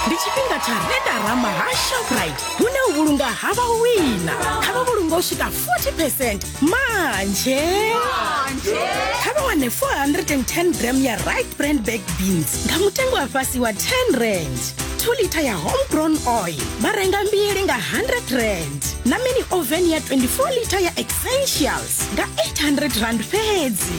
ndi tshifhinga tsha redarama ha shoprite hune u vhulunga ha vha wina kha vha vhulunga u swika 40 percent manje kha vha wane 410 gram ya right brand bag beans nga mutengo wa fhasi wa 10 rand 2 lita ya homegrown oil vha renga mbili nga 100 rand na mini oven ya 24 lita ya essentials nga 800 rand fhedzi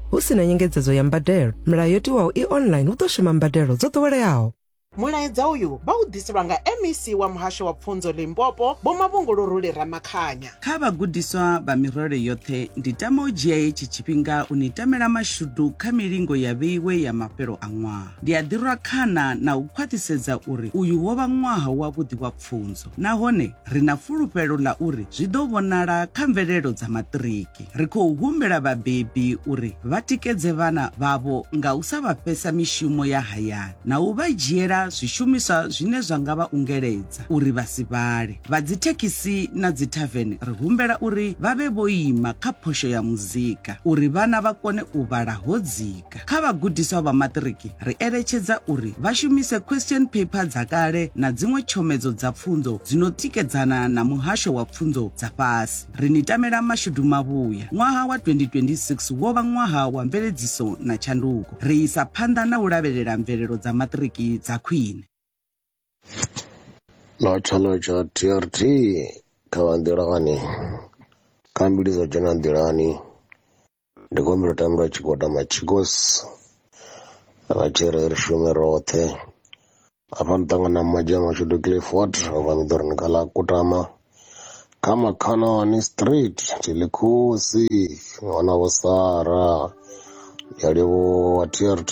hu si na nyengedzedzo ya mbadelo milayo yo tiwaho i online hu ḓo shuma mbadelo dzo ḓoweleaho mulaedza uyu vha u ḓiselwa nga mec wa muhasho wa pfunzo limpopo vho mavhunguluruli ramakhanya kha vhagudiswa vha mirole yoṱhe ndi tama u dzhia hetshi tshifhinga u ni tamela mashudu kha milingo ya vheiwe ya mafhelo a ṅwaha ndi a ḓirwa khana na u khwaṱhisedza uri uyu wo vha ṅwaha wavhuḓi wa pfunzo nahone ri na fulufhelo ḽa uri zwi ḓo vhonala kha mvelelo dza maṱiriki. Ri khou humbela vhabebi uri vha tikedze vhana vhavho nga u sa vha fhesa mishumo ya hayani na u vha dzhiela zwishumiswa zwine zwa nga vha ungeledza uri vha si vhale. Vha dzithekhisi na dzithavene ri humbela uri vha vhe vho ima kha phosho ya muzika uri vhana vha kone u vhala ho dzika. Afrika. Kha vhagudiswa vha maṱiriki, ri eletshedza uri vha shumise question paper dza kale na dziṅwe tshomedzo dza pfunzo dzi no tikedzana na muhasho wa pfunzo dza fhasi. Ri ni tamela mashudu mavhuya. Ṅwaha wa 2026 wo vha ṅwaha wa mveledziso na tshanduko. Ri isa phanḓa na u lavhelela mvelelo dza maṱiriki dza khwine. na tshanduko tsha TRT kha vha nḓilani, kha mbili dzo dzhena nḓilani. ndi khou humbela u tambela tshigwada machicos vha tshi ri ri shume roṱhe afha ni ṱangana na madzhia mashudu clifford ovha ni ḓo ri ni kha ḽa kutama kha makhanani street tilikhosi wana vho sara ya livhuwa trt